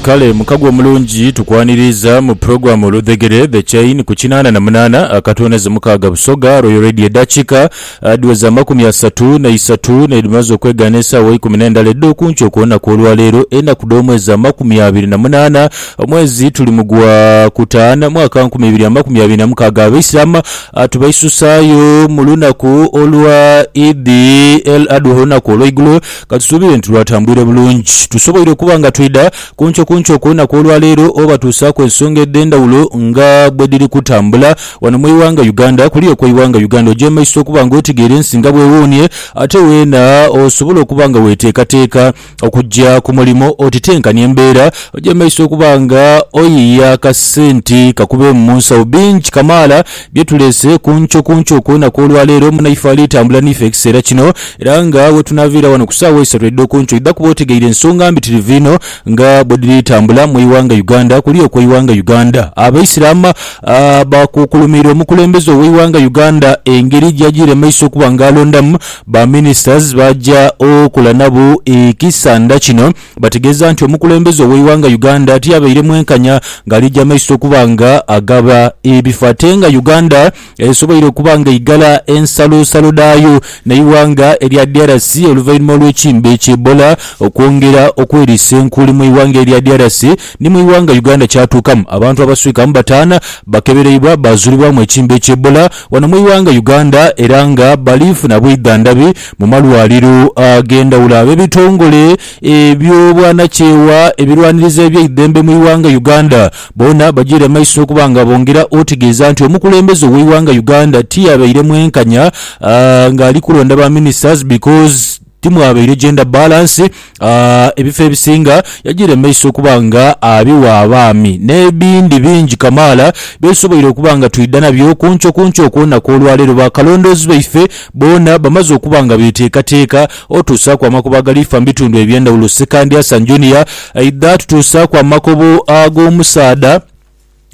Kale mukago omulungi tukwaniriiza mu program Oludhegere, The Chain, ku kinaana na munaana akatooneze mukaaga Busoga, Royal Radio edakika dhiweze amakumi asatu na isatu nedhimaze okwegaana esaawa ikumi nendala edhokunkyo kulunaku olwaleero enaku dhomwezi amakumi abiri na munaana omwezi tuli mu gwa kutaana mwaka nkumi ibiri amakumi abiri na mukaaga Abaislam tubaisusaayo mulunaku olwa Eid El Adhuha olunaku olwaigulo Ka tusuubire nti lwatambwire bulungi. Tusoboire okuba nga twidha kunkyo kunkyo ku lunaku olwaleero oba tuusaaku ensonga edh'endhawulo nga bwe dhiri kutambula wano mu ighanga Uganda. Kuliya okwa ighanga Uganda ogyemaiso okuba nga otegeera ensi nga bwewuunhie ate weena osobole okuba nga weteekateeka okugya ku mulimo oti tenkania embeera ogyemaiso okuba nga oyiiya akasente kakubeemu mu nsawo. Bingi kamaala Bye tuleese ku nkyo ku nkyo okw'enaku olwa leero, munaife ali tambula n'ife ekiseera kino, era nga we tunaaviira wano ku saawa isatu edh'oku nkyo idha kuba otegeire ensonga mbitirivu inho nga bwe dhiri tambula mu ighanga Uganda. Kuli okwo ighanga Uganda Abaisiraama baakukulumiira omukulembeze ow'ighanga Uganda engeri gy'ajiire mu maiso okuba nga alondamu ba ministers b'aja okola nabo ekisanda kino. bategeeza nti omukulembeze ow'eighanga Uganda tiyabaire mwenkanya ng'alija maiso okuba nga agaba ebifa ate nga Uganda esoboire okuba nga eighala ensalosalo dhaayo n'eighanga erya DRC oluvainhuma olw'ekimbe ki Ebola okwongera okweriisa enkuuli mu ighanga erya DRC ni mu ighanga Uganda kyatuukamu abantu abaswika mu bataana bakebereibwa baazulibwamu ekimbe ki Ebola wano mu ighanga Uganda era nga bali funa bwidhandhabi Mu malwaliro ag'endhawulo ab'ebitongole eby'obwanakyewa ebirwaniriza ebyaidhembe mu ighanga Uganda boona bajiire mu maiso okuba nga bongera otegeeza nti omukulembeze ow'eighanga Uganda tiyabaire mwenkanya ng'ali kulonda ba ministers because timwabaire gender balance Ebifo ebisinga yajiire mu maiso okuba nga abiwa abaami, n'ebindi bingi kamaala byetusoboire okuba nga twidha nabyo kuncokunco okwonaku olwaleero bakalondoozi baife boona bamaze okuba nga beteekateeka otuusaaku amakobo agaliifa mu bitundu eby'endhawulo. Ssekandi Hassan Junior aidha atutuusaaku amakobo ag'omusaadha.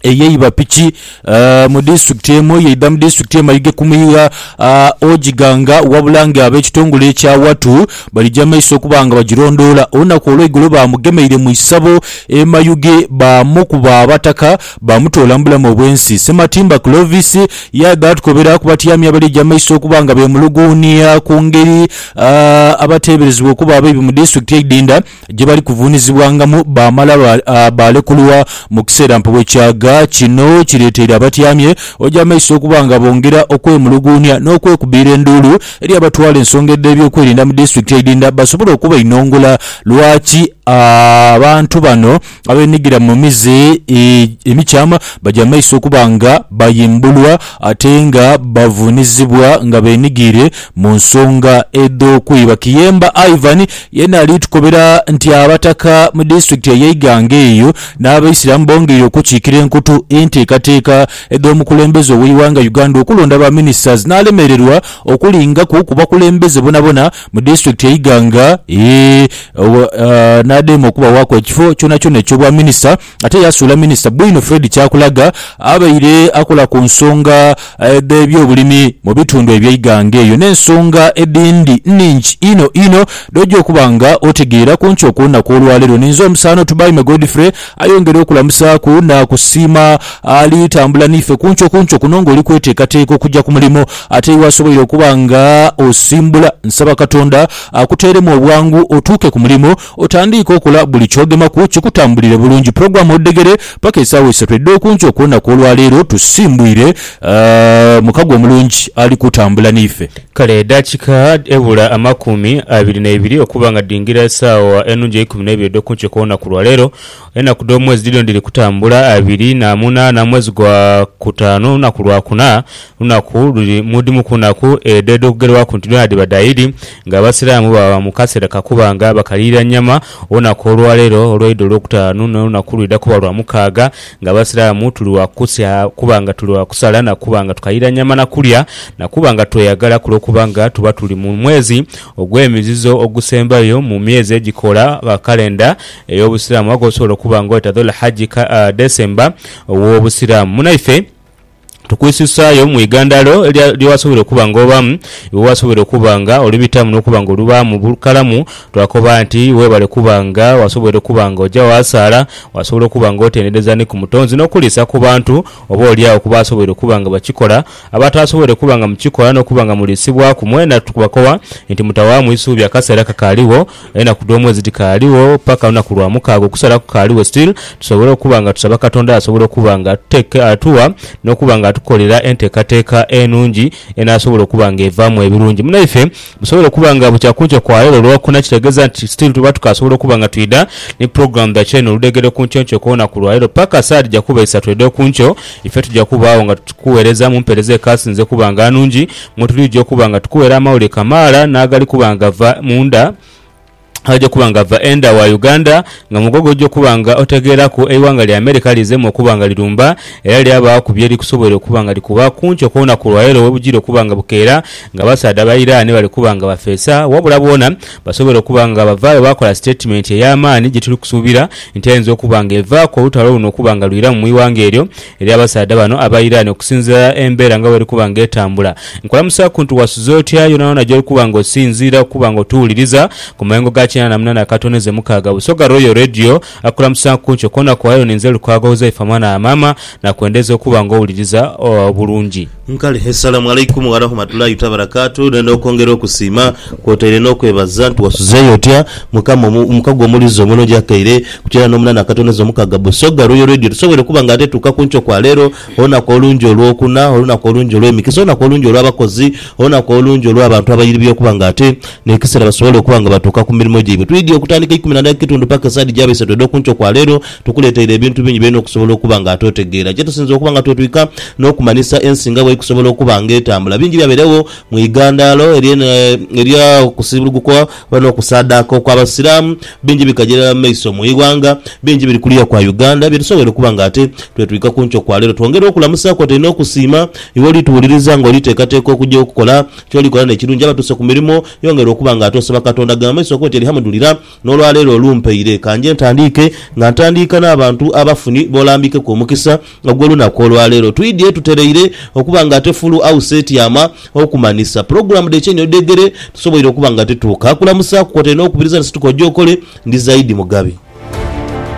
eyeiba piki mu disitulikiti emu eyeidha mu disitulikiti emayuge ku mwiigha Ojji Ganga wabula nga ab'ekitongole ekya Watu balija maiso okuba nga bagirondoola. Olunaku olweigulo baamugemeire mu isabo e Mayuge baamukuba abataka baamutoola mu bulamu obwensi. Ssematimba Clovis yaidha atukobera ku batyami abalija maiso okuba nga beemuluguunia ku ngeri abateeberezebwa okuba abaibi mu disitulikiti eidinda gye bali kuvuunizibwangamu baamala baalekulwa mu kiseera mpewo kyaga. Kino kireeteire abatyamye ojamaiso okuba nga bongera okwemuluguunia n'okwekubiira enduulu eri abatwala ensonga edh'ebyokwerinda mu disitulikiti eidhindha basobole okubainongula lwaki abantu bano Abeenhigira mu mize emikyama baja mu maiso okuba nga bayimbulwa ate nga bavuunizibwa nga beenhigiire mu nsonga edh'okwiba. Kiyemba Ivan yeena ali tukobera nti Abataka mu disitulikiti eye Iganga eyo n'Abaisiramu bongeire okukiikira enkutu enteekateeka edh'omukulembeze ow'eighanga Uganda okulonda ba ministers n'alemererwa okulingaku ku bakulembeze bonabona mu disitulikiti e Iganga n'adema okubawaaku ekifo kyonakyona eky'Obwaminisita ate yaasuula Minisita Bwino Fred Kyakulaga abaire akola ku nsonga dh'ebyobulimi mu bitundu eby'e Iganga eyo n'ensonga edhindi nhingi inho inho dh'oja okuba nga otegeera. Ku nkyo kw'olunaku olwaleero ninze omusaano Tubaime Godfrey Ayongera okulamusaaku naakusiima. Ali tambula n'ife kunkyo kunkyo kuno ng'oli kweteekateeka okuja ku mulimo ate iwe asoboire okuba nga osimbula. Nsaba Katonda akuteeremu obwangu otuuke ku mulimo otandiike okola buli ky'ogemaku kikutambulire bulungi. Pulogulaamu odhegere paka esaawa isatu edh'okunkyo okw'enaku olwaleero tusimbwire mukago omulungi ali kutambula n'ife. Kale edaakika ebula amakumi abiri n'eibiri okuba nga dhingira esawa enungi eikumi n'eibiri edh'oku nkyo kw'olunaku lwa leero, enaku dh'omwezi dhidhino dhiri kutambula, abiri na munaana mwezi gwa kutaanu lunaku lwa kuna, lunaku luli mu dhimu ku naku edho edh'okugerwaku nti dhoona dhiba dha Idi, nga Abasiraamu baba mu kaseera ka kuba nga bakaliira nyama olunaku olwa leero olw'Eid olw'okutaanu n'olunaku lwidha kuba lwa mukaaga. Nga Abasiraamu tuli wa kusia kuba nga tuli wa kusala na kuba nga tukayira nyama na kulya na kuba nga tweyagala ku lw'okuba nga tuba tuli mu mwezi ogw'emizizo ogusembayo mu myezi egikola kalenda ey'Obusiraamu agosobola okuba nga oita Dhul-Hajji, December, ow'Obusiraamu. Munaife. Tukwisusayo mu igandhalo lya lye wasobola okuba nga obamu, lye wasobola okuba nga olibitamu n'okuba nga olubaamu bukalamu. Twakoba nti webale kuba nga wasobola okuba nga oja waasaala, wasobola okuba nga otendereza ni ku Mutonzi n'okuliisa ku bantu oba oli agho ku baasobola okuba nga bakikola. Abataasobodde kuba nga mukikola n'okuba nga muliisibwaku, mwena tubakoba nti mutawaamu isuubi akaseera kakaaligho. Enaku dh'omwezi dhikaaligho paka lunaku lwa mukaaga, okusala kukaaligho still, tusobole okuba nga tusaba Katonda asobole okuba nga atuteka, atuwa n'okuba nga atukolera enteekateeka enungi enaasobola okuba nga evaamu ebirungi munaife. Musobole okuba nga bukya kunkyo kwa leero Lwakuna kitegeeza nti still tuba tukaasobola okuba nga twidha ni program dha Kyeyune oludhegere kunkyonkyo kw'olunaku lwa leero paka saha dhija kuba isatu edh'okunkyo, ife tuja kubaagho nga tukuweereza mu mpeereza ekaasinze okuba nga anungi. mwe tulija okuba nga tukuwera amawulire kamaala n'agali kuba nga gava mu nda agali kuba nga gava enda wa Uganda nga mugwo gw'oja okuba nga otegeeraku eighanga lya America lizemu okuba nga lirumba era lyabaaku bye likusoboire okuba nga likuba ku nkyo kw'olunaku lwaleero we bujira okuba nga bukeera ng'abasaadha ba Iran bali kuba nga bafeesa wabula boona basoboire okuba nga bavaayo baakola sitetimenti ey'amaani gye tuli kusuubira nti eyinza okuba nga evaaku olutalo luno okuba nga lwiramu mu ighanga eryo Eri abasaadha bano aba Iran, okusinziira embeera nga bw'eri kuba nga etambula, nkulamusaaku nti wasuze otya yoonayoona gy'oli kuba nga osinziira okuba nga otuwuliriza ku mayengo ga kinaana mu nana akatoneze mukaaga. Busoga Royal Radio akulamusaaku ntyo kwona kw'oli ayo ninze Lukwago Huzaifa mwana wa maama, nakwendeza okuba nga owuliriza bulungi. Nkale Essalamu Alaikum Warahmatullahi Tabarakatuh Nenda okwongera okusiima kwotaire n'okwebaza nti wasuzeeyo otya Mukama omu omukago omulize omunwe gyakaire kukira n'omunana akatoneza omukaga Busoga Royal Radio tusobweire okuba nga ate tuuka kunkyo kwa leero olunaku olungi olwokuna olunaku olungi olwemikisa olunaku olungi olwabakozi olunaku olungi olwabantu abairibya okuba nga ate nekisera basobole okuba nga batuuka kumirimo gyaibwe twidhi okutandika eikumi nadhatu kitundu paka esaidi gyaba isatu edhokunkyo kwa leero Tukuleteire ebintu bingi by'olina okusobola okuba nga ate otegeera. Kye tusinze okuba nga twetwika n'okumanhisa ensi nga bw'ekusobola okuba nga etambula. Bingi byabeeregho mu ighandaalo ery'okusiibulugukwa oba n'okusaadaaka okw'Abasiraamu. Bingi bikajaira mu maiso mu ighanga. Bingi biri kuliya kwa Uganda, bye tusoboire okuba nga ate twetwika ku nkyo kwa leero. Twongera okulamusa kwotaire n'okusiima iwe oli tuwuliriza nga oli teekateeka okugya okukola ky'oli kola n'ekirungi. Abatuuse ku mirimo, yongera okuba nga ate osaba Katonda. Gema mu maiso okole oti Alihamudulira. N'olwaleero olumpaire, ka nje ntandiike nga ntandiika n'abantu abafuni b'olambikeku omukisa ogw'olunaku olwaleero. Twidhye tutereire okuba nga ate Full House etyama okumanhisa pulogulaamu dh'ekyenyi odhegere tusoboire okuba nga tituuka kulamusaaku kwotaire n'okubiriza ni situka oje okole. Ndi Zaidi Mugabi.